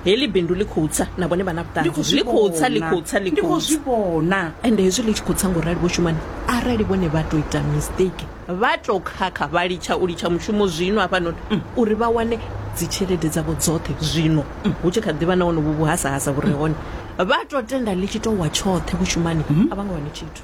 heḽi bindu ḽi khou tsa na vhone vha na vhuṱanzi ḽi khou tsa ḽi khou tsa ḽi ndi khou khou zwi vhona ende hezwi ḽi tshi khou tsa ngorali vho shumani arali vhone vha tou ita mistake vha tou khakha vha litsha u litsha mushumo zwino hafhanoni mm, uri vha wane dzitshelede dzavho dzoṱhe zwino mm, hu tshi kha ḓivha na wonovo vhuhasahasa vhu re hone vha tou tenda ḽi tshi tou wa tshoṱhe vho shumani a vha nga wane tshithu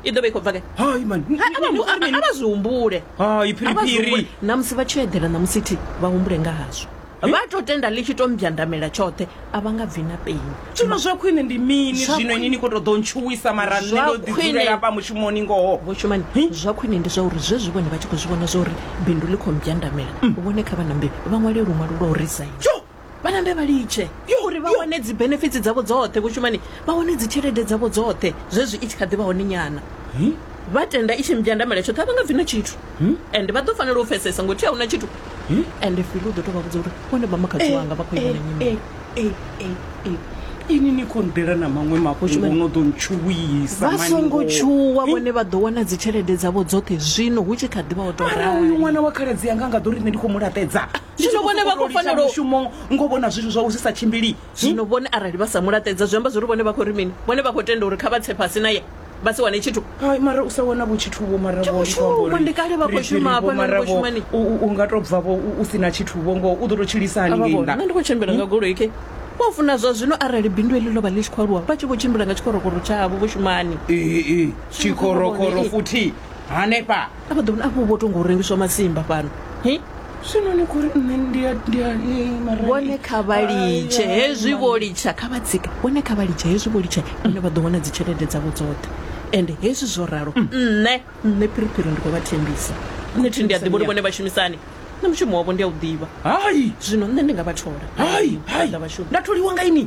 i ḓo vha i khou bva ke hai mani A- a vha hu- a- a- a vha zwi humbule hai A vha zwi humbule. phiriphiri na musi vha tshi yo eḓela na musi thi vha humbule nga hazwo vha to tenda ḽi tshi to mbyandamela tshoṱhe a vha nga bvi na peni zwino zwa khwine ndi mini Zwa zwino ini khwine- ni khou tou ḓo ntshuwisa mara nṋe Zwa ndo ḓi khwine- dzulela hafha mushumoni ngoho vho shumani zwa khwine ndi zwa uri zwezwi vhone vha tshi khou zwi vhona zwa uri bindu ḽi khou mbyandamela vhone kha vha nambe vha ṅwale luṅwalo lwa u resign Tsho, vhanambe vha litshe uri vha wane dzi benefits dzavho dzoṱhe vho shumani vha wane dzi tshelede dzavho dzoṱhe zwezwi i tshi kha ḓi vha hone nyana vha tenda i tshi mbyandamela tshoṱhe a vha nga bvi na tshithu and vha ḓo fanela u pfesesa ngo thi a huna tshithu and fili u ḓo tou vha vhudza uri vhone vha makhadzi wanga vha khou ivha na nyimele ini ni khou nḓela na maṅwe mafhungo no ḓo ntshuwisa vha songo tshuwa vhone vha ḓo wana dzi tshelede dzavho dzoṱhe zwino hu tshi kha ḓi vha o tou rali uyu ṅwana wa khaladzi yanga a nga ḓo ri nṋe ndi khou mu laṱedza zwino vhone vha khou fanela mushumo ngo vhona zwithu zwa u sa tshimbili zwino vhone arali vha sa mulaṱedza zwi amba zwi ri vhone vha khou ri mini vhone vha khou tenda uri kha vha tse fhasi na ye vha si wane tshithu hai mara u sa wana vho tshithu vho mara vho shuma ndi kale vha khou shuma hafha na khou shuma ni u nga to bva vho u si na tshithu vho ngo u ḓo to tshilisa hani ngei nda ndi khou tshimbila nga goloi ke vho funa zwa zwino arali bindu eḽi ḽo vha ḽi tshi khou aluwa vha tshi vho tshimbila nga tshikorokoro tshavho vho shumani ee tshikorokoro futhi hanefha a vha ḓo vhona afho vho to ngo rengiswa masimba fhano hi zwino ni khou ri nṋe ndi a- ndi a- ni mara ni- vhone kha vha litshe Ai, ai, hezwi mara- vho litsha kha vha tsika vhone kha vha litshe hezwi vho litsha vhone vha ḓo wana dzi tshelede dzavho dzoṱhe ende hezwi zwo ralo nṋe nṋe phiriphiri ndi khou vha thembisa nṋe thi ndi a ḓivha uri vhone vha shumisani nṋe mushumo wavho ndi a u ḓivha hai zwino nṋe ndi nga vha thola hai hai Vha ḓa vha shuma. nda tholiwa nga ini